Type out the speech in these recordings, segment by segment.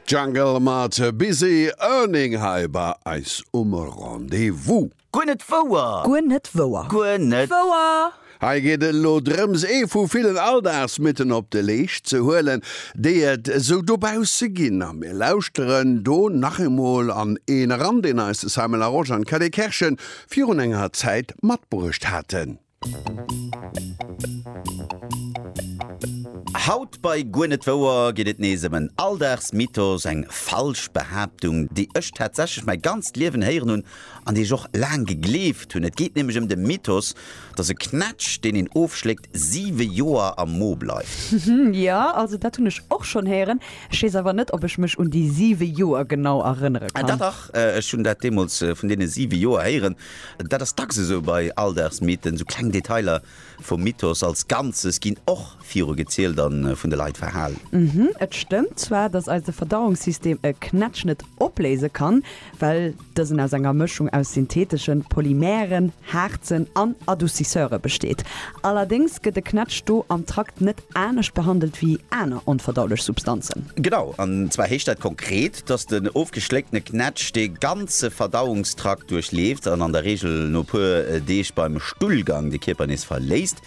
Jungle mat Busy Earning hei bei eis um Rendez-vous. Guer net wouer! Guer net wouer! Guer net wouer! Hei geet et elo drëms, ee vu villen Alldagsmythen op de Leescht ze huelen, déi et esou dobausse ginn. A mir lauschteren do nach eemol an een eran, deen eis de Simon Larosche an d'Kelly Kerschen virun enger Zäit matbruecht haten. Haut bei Guer net wouer geet et nees ëm en Alldagsmythos, eng falsch Behaaptung, déi ech tatsächlech mäi ganzt Liewen héieren hunn an déi ech och laang gegleeft hunn. Et geet nämlech ëm de Mythos, dass e Knätsch, deen een ofschléckt, siwe Joer am Mo bleift. Jo, also dat hunn ech och schonn héieren. Ech weess awer net, ob ech mech un déi siwe Joer genau erënnere kann. Dach, dach, ech hunn dat deemools vun deene siwe Joer héieren. Dat ass dacks esou bei Alldagsmythen, esou kleng Detailer vum Mythos als Ganzes ginn och viru gezielt a vun de Leit verhalen. Mhm, et stëmmt zwar, dass eise Verdauungssystem e Knätsch net opléise kann, well dësen aus enger Mëschung aus syntheteschen Polymeren, Haarzen an Adoucisseure besteet. Allerdéngs gëtt e Knätsch do am Trakt net anescht behandelt wéi aner onverdaulech Substanzen. Genau, an zwar heescht dat konkret, dass den ofgeschléckte Knätsch de ganze Verdauungstrakt duerchleeft an an der Reegel no puer Deeg beim Stullgang de Kierper nees verléisst.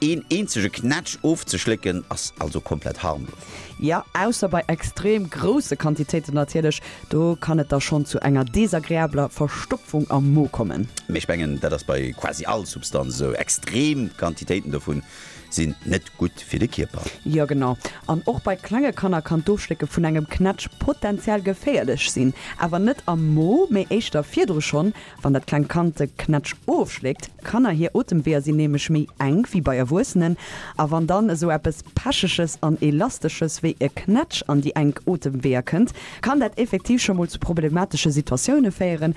Een eenzege Knätsch ofzeschlécken ass also komplett harmlos. Jo, ausser bei extrem grousse Quantitéiten natierlech, do kann et da schonn zu enger desagreabler Verstopfung am Mo kommen. Mee ech mengen, dat ass bei quasi all Substanz esou. Extrem Quantitéiten dovun sinn net gutt fir de Kierper. Jo genau, an och bei klenge Kanner kann d'Ofschlécke vun engem Knätsch potenziell geféierlech sinn. Awer net am Mo, mee éischter virdru. Schonn wann dat klengt Kand de Knätsch ofschléckt, Kanner hir Otemweeër sinn nämlech méi enk wéi bei Erwuessenen, a wann dann esou eppes Pecheges an Elastesches wéi e Knätsch an déi enk Otemweeër kënnt, kann dat effektiv scho mol zu problematesche Situatioune féieren,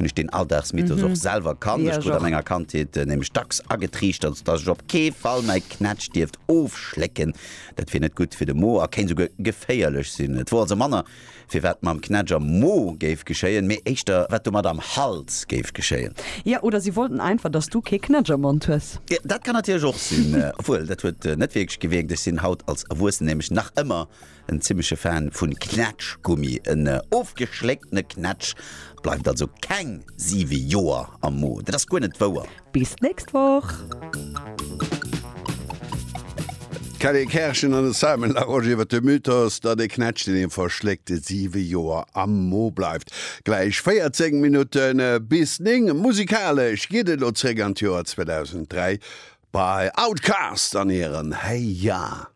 hunn ech deen Alldagsmythos och selwer kannt. Ech krut a menger Kandheet nämlech dacks agetriichtert, dass ech op kee Fall mäi Knätsch dierft ofschlécken, dat wier net gutt fir de Mo a kéint esouguer geféierlech sinn. Et wor also manner, firwat mam Knätsch am Mo géif geschéien, mee éischter, wat domat am Hals géif geschéien. Jo, oder si wollten einfach, dass du kee Knätsch am Mond hues. Dat kann natierlech och sinn. Obwuel, dat huet net wierklech gewierkt, ech sinn haut als Erwuessen nämlech nach ëmmer En zimleche Fan vun Knätschgummi, en ofgeschlécktene Knätsch bleift also keng 7 Joer am Mo. Dat ass guer net wouer. Bis d'nächst Woch! D'Kelly Kerschen an de Simon Larosche iwwer de Mythos, datt e Knätsch, deen ee verschléckt, 7 Joer am Mo bleift. Gläich 14 Minutte bis 9. Musikalesch geet et elo zréck an d'Joer 2003 bei Outkast an hirem Hey Ya!